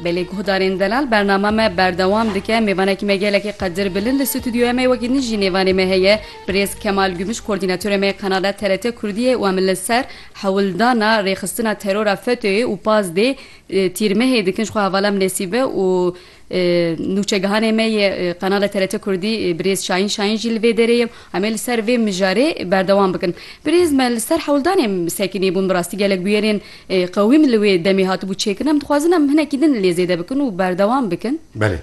Belê guhdarên delal bernama me berdewam dike mêvanekî me gelekî qedir bilind li stûdyoya me wekî nijî nêvanê me heye birêz Kemal Gümüş kordînatorê me yê qenala TRT Kurdiyê û em li ser hewldana rêxistina terora FETÖ'yê û PASD'ê tîrmehê dikin ji xwe hevala em nesîbe û Nûçegihanê me yê qenala TRT Kurdî birêz Şahin Şahin jî li vê derê ye. Em ê li ser vê mijarê berdewam bikin. Birêz me li ser hewldanê sekinî bûn. Bi rastî gelek bûyerên qewî min li wê demê hatibû çêkirin. Em dixwazin em hinekî din lê zêde bikin û berdewam bikin. Belê.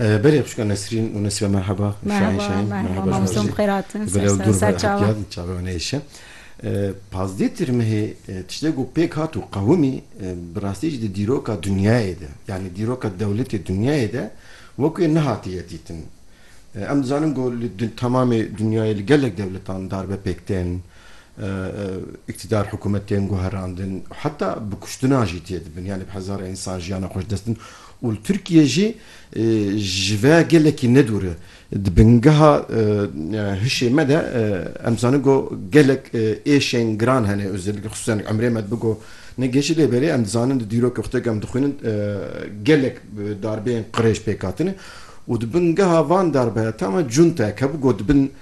Belê Xwişka Nesrîn û Nesîbe merheba. Şahin Şahin merheba ji bo vê. Gule û dûr ve hatiyan çavê wan hêşin. Pazdeh Tirmihê tiştê ku pêk hat û qewimî bi rastî jî di dîroka dinyayê de yanî dîroka dewletê dinyayê de wek wê nehatiye dîtin. Em dizanin ku li temamê dinyayê li gelek dewletan darbe pêk tên, îktîdar hikûmet tên guherandin û heta bi kuştina jî tê dibin yanî bi hezara însan jiyana xwe ji dest didin û li Tirkiyê jî ji ve gelekî nedûr e. Di bingeha hişê me de em dizanin ku gelek êşên giran hene û xisûsan emrê me dibe ku ne gêşî lê belê em dizanin di dîrokê xwe de ku em dixwînin gelek darbeyên qirêj pêk hatine û di bingeha van darbeyan tam e cuntayek hebû ku di bin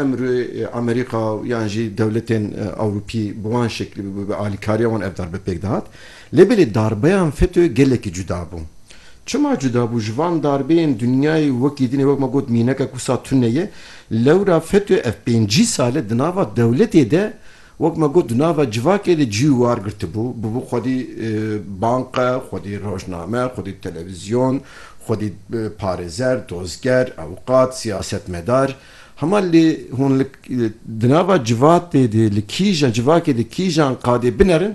emrê Amerîka yan jî dewletên Ewropî bi wan şeklî bi alîkariya wan ev darbe pêk dihat. Lê belê darbeyan FETÖ'yê gelekî cuda bû. Çima cuda bû? Ji van darbeyên dinyayê wekî din e, wek me got mînekek wisa tune ye. Lewra FETÖ ev pêncî sal e di nava dewletê de wek me got di nava civakê de cî û war girtibû. Bûbû xwedî banka, xwedî rojname, xwedî televizyon, xwedî parêzer, dozger, ewqat, siyasetmedar. Hema lê hûn li di nava civatê de li kîjan civakê de kîjan qadê binerin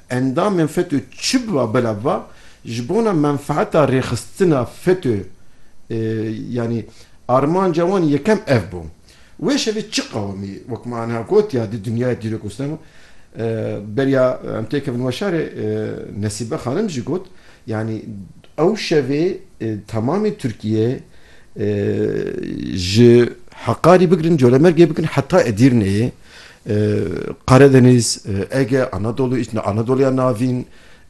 Endamên FETÖ çi biba bila biba ji bona menfeeta rêxistina FETÖ yanî armanca wan yekem ev bû. Wê şevê çi qewimî wek me aniha gotiya di dinyayê dîrok û stema beriya em tê kevin weşarê Nesîbe xanim jî got yanî ew şevê temamê Tirkiye ji Heqarî bigirin Colemêrgê bigirin heta Edîrneyê Karadeniz, Ege, Anadolu, Anadoluya Navîn,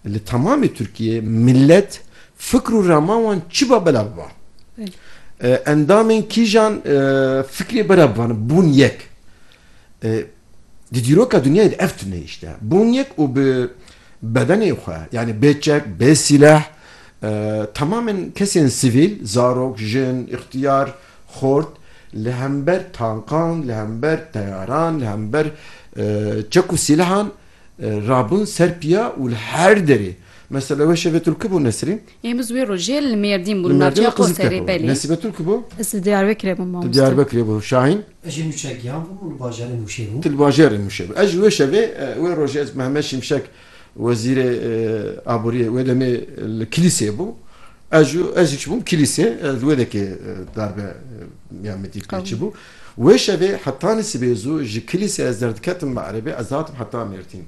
li temamê Tirkiyeyê milet, fikr û rama wan çi ba belav ba. Endamên kîjan fikrê belav bibane, bûn yek. Di dîroka dinyayê de ev tune îş de. Bûn yek û bi bedenê xwe yanî bê çek, bê sîleh temamên kesên sivîl, zarok, jin, îxtiyar, Xort, li hember tankan, li hember teyaran, li hember çek û sîlehan rabûn ser piya û li her derê. Mesela wê şevê Tulki bû Nesrîn. Yên biz wê rojê li Mêrdîn bûn, li navçeya Qoserê, belê. Nesîbe Tulki bû? Ez li Diyarbekirê bûm mamoste. Tu Diyarbekirê bû. Şahîn? Ez jî nûçegiyan bûm û li bajarê Mûşê bûm. Tu li bajarê Mûşê bû. Ez jî wê şevê, wê rojê ez Mehmet Şimşek. Wezîrê Aboriyê wê demê li Kilîseyê bû. Ez jî ez jî çibûm Kilîseyê, ez wê dekê darbe ya min dît pê çibû. Wê şevê hetanî sibê zû ji Kilîseyê ez derdiketim Me'ribê, ez dihatim heta Mêrdîn.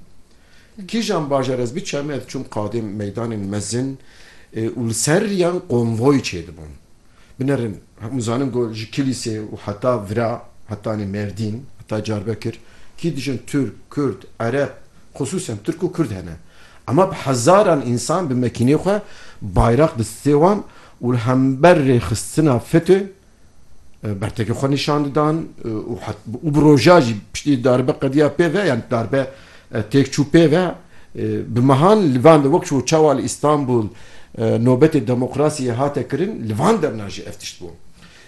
Kîjan bajar ez biçem ez çûm qadên meydanên mezin û li ser riyan konvoy çêdibûn. Binerin. Hemû zanin ku ji Kilîsê û heta vira, hetanê Mêrdîn, heta Carbekir, kî dijin Tirk, Kurd, Ereb, xusûsen Tirk û Kurd hene. Ema bi hezaran însan bi mekînê xwe bayraq di stê wan û li hember rêxistina FETÖ bertekê xwe nîşan didan û bi roja jî piştî darbe qediya pê ve, yan darbe Têkçû pê ve, bi mehan li van de wek ku çawa li Îstanbul nobetê demokrasiyê hate kirin, li van demna jî ev tişt bû.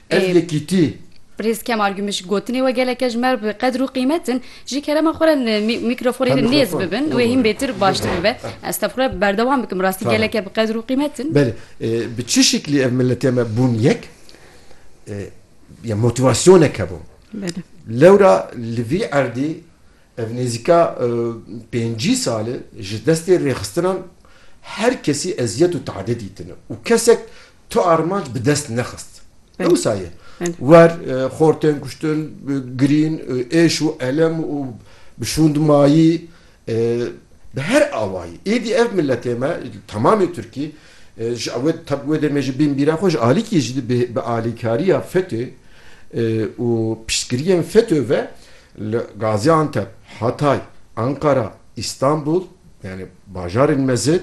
Ev yekîtî. Birêz Kemal Gümüş, gotinê we geleke ji me bi qedir û qîmet in. Ji kerema xwe re li mîkrofonê de nêz bibin, wê hîn bêtir baştir bibe. Ez tevqûr e berdewam bikim, rastî geleke bi qedir û qîmet in. Belê, bi çi şiklî ev miletê me bûn yek, ya motîvasyonek hebû. Belê. Lewra li vî erdî Ev nêzîka pêncî sal e ji destê rêxistinan her kesî eziyet û teedê dîtine û kesek tu armanc bi dest nexist. Ewsa ye. Wer xor tên kuştin, girîn, êş û elem û bi şûnd mayî bi her awayî. Êdî ev miletê me temamê Tirkî ji ew tep wê demê ji bînbîra xwe ji alîkî jî bi alîkariya FETÖ û piştgiriyên FETÖ ve Li Gaziantep, Hatay, Anqara, Îstanbul yanî bajarên mezin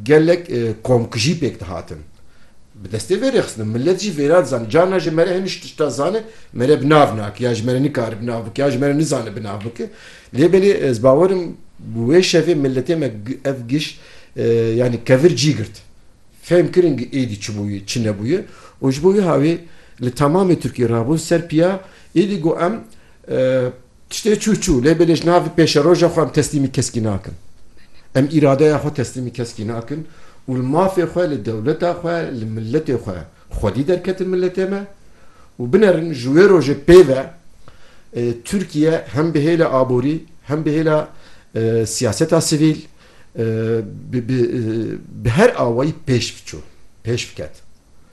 gelek komkujî pêk dihatin. Bi destê vê rêxistinê milet jî vêrê dizane. Carna ji mere hinî ji tişta zane mere bi nav nake ya ji mere nikare bi nav bike ya ji mere nizane bi nav bike. Lê belê ez bawer im bi wê şevê miletê me ev giş yanî kevir cî girt. Fehm kirin ku êdî çi bûye çi nebûye û ji bo wê hawê li temamê Tirkiyê rabûn ser piya Êdî got em tiştê çû çû lê belê ji navê pêşeroja xwe em teslîmî keskî nakin. Em îradeya xwe teslîmî keskî nakin û li mafê xwe, li dewleta xwe, li miletê xwe xwedî derketin miletê me û binerin ji wê rojê pê ve Tirkiye hem bi hêla aborî hem bi hêla siyaseta sivîl bi bi her awayî pêş biçû, pêş biket.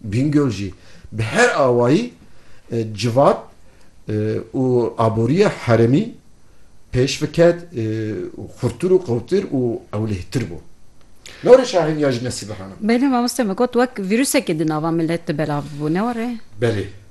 Bingöl jî bi her awayî civat û aboriya herêmî pêş viket û xurtir û qewtir û ewlehtir bû. Newre şahîn ya ji nesî bihana. Belê mamoste min got wek vîrusekê di nava milet de belav bû, newre? Belê.